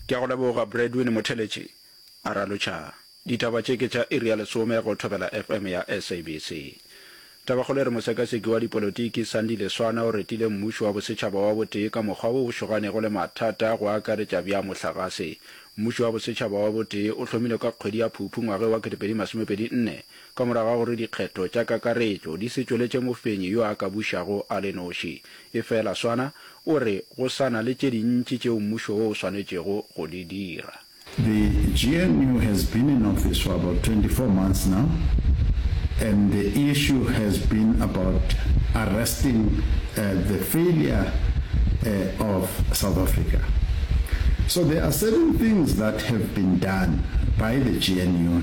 Ke a go leboga Bradwin Motheletši, a ralotšha. Ditaba tše ke tša iri ya lesome go Thobela FM ya SABC. Tabakgolo e re mosekaseki wa dipolotiki Sandile Swana o retile mmušo wa bosetšhaba wa botee ka mokgwa wo o šoganego le mathata go akaretša bja mohlagase. Mmušo wa bosetšhaba wa botee o hlomilwe ka kgwedi ya Phuphu ngwageng wa 2024 Ka morago ga gore dikgetho tša kakaretšo di se tšweletše mofenyi yo a ka bušago a le noši, efela Swana o re go sa na le tše dintši tšeo mmušo wo o swanetšego go di dira. The GNU has been in office for about 24 months now and the issue has been about arresting the failure of South Africa. So there are certain things that have been done by the GNU.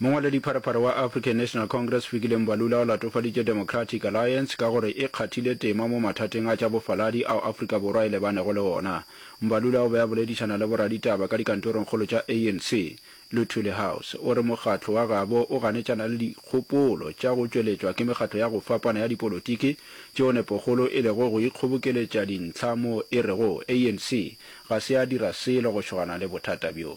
Mongwaladipharephare wa African National Congress Fikile Mbalula o latofaditše Democratic Alliance ka gore e kgathile tema mo mathateng a tša bofaladi ao Afrika Borwa e lebanego le ona. Mbalula o be a boledišana le boraditaba ka dikantorongkgolo tša ANC, Luthuli House. O re mokgatlo wa gabo o ganetšana le dikgopolo tša go tšweletšwa ke mekgatlo ya go fapana ya dipolotiki tšeo nepokgolo e lego go ikgobokeletša dintlha moo e rego ANC ga se ya dira selo go šogana le bothata bjo.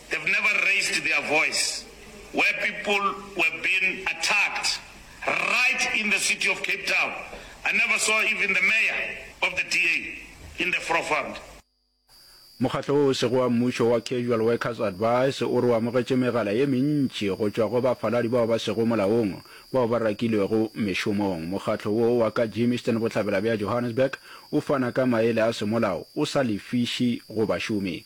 They've never raised their voice where people were being attacked right in the city of Cape Town. I never saw even the mayor of the DA in the forefront. Mokgatlo wo o sego wa mmušo wa Casual Workers Advice o re o amogetše megala ye mentši go tšwa go bafaladi bao ba sego molaong bao ba rakilwego mešomong. Mokgatlo wo wa ka Germiston bohlabela bja Johannesburg o fana ka maele a semolao o sa lefiši go bašomi.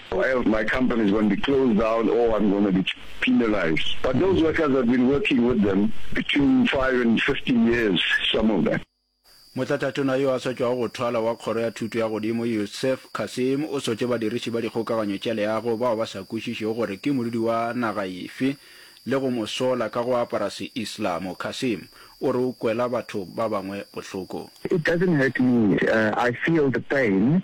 or else my company is going to be closed down or I'm going to be penalized. But those workers have been working with them between five and fifteen years, some of them. Motlatatona yo a sa tšwago go thwala wa Kgoro ya Thuto ya Godimo Youssef Kassim o sotše badiriši ba dikgokaganyo tša leago bao ba sa kwešišego gore ke modudi wa naga efe le go mo sola ka go apara Seislamo. Kassim o re o kwela batho ba bangwe bohloko. It doesn't hurt me, I feel the pain.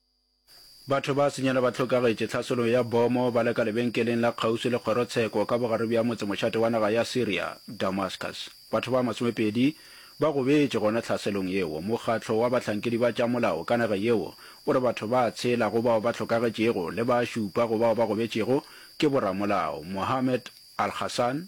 Batho ba senyela ba hlokagetše tlhaselo ya bomo ba le ka lebenkeleng la kgauswi le kgorotsheko ka bogare bja motsemošate wa naga ya Syria, Damascus. Batho ba masomepedi ba gobetše gona tlhaselong yeo. Mokgatlo wa bahlankedi ba tša molao ka naga yeo o re batho ba tshela go bao ba hlokagetšego le ba šupa go bao ba gobetšego ke boramolao. Mohammed Al-Hassan,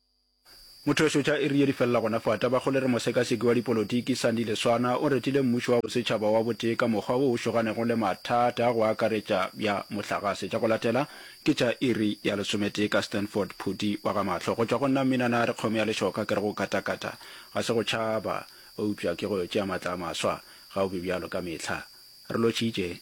Mothweso tša iri ye di felela gona fa. Tabakgole re mosekaseki wa dipolotiki Sandile Swana o retile mmušo wa bosetšhaba wa botee ka mokgwa wo o šoganego le mathata go akaretša bja mohlagase. Tša go latela ke tša iri ya lesometee ka Stanford Phuti wa ga Mahlo. Go tšwa go nna Mminana a re kgomo ya lešoka ke re go katakata ga se go tšhaba eupša ke go tšea matla a maswa ga o be bjalo ka mehla re lotšhitše.